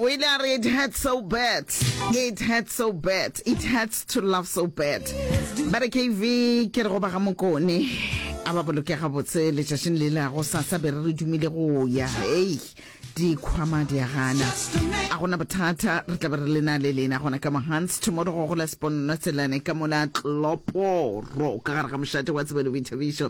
o ile a re it hurts so bad it hurts so bad it hurts to love so bad ba re kv ke re go ba ga mokone a ba boloke gabotse letšatšing le lago sasa be re re dumile go ya ei dikhwama di a gana a gona bothata re tla be re lena le lena gona ka mohans tomorrow go gola seponno tselane ka mola tloporo ka gare ga mošate wa tsebelo boithabišo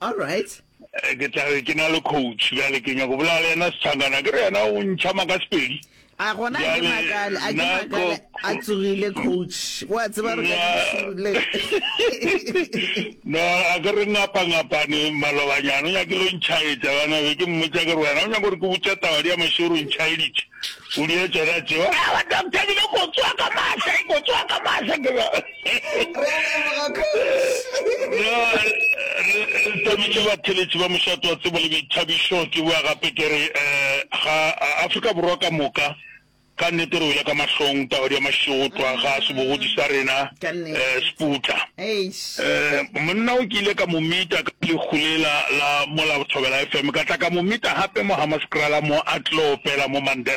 All right. Ke tla re ke na le coach bjale ke nyako bolela le yena setshangana ke re yena o ntšha maka sepedi. A gona a ke makale a ke makale a tsogile coach wa tseba re le. No a ke re ngapa ngapane malobanyana o nyakile o ntšhaetša bana be ke mmotša ke re wena o nyako re ke botša taba di ya mašoro ntšhaeditše. O di etša ka tšeo. Ga ba doctor dilo go tswa ka mahla, go tswa ka mahla ke ba. Re leboga kgoši. No, re thabile batheletši ba mošato wa tsebo le boithabišo. Ke bua gape ke re eh, ga Afrika Borwa ka moka ka nnete re wele ka mahlong taba di ya mašotwa ga a sebogodi sa rena eh, seputla eh, monna o ke ile ka mo mita ka lekgulela la mola bothobela fm ka tla ka mo mita gape mo hamaskrala mo a tlo opela mo mandela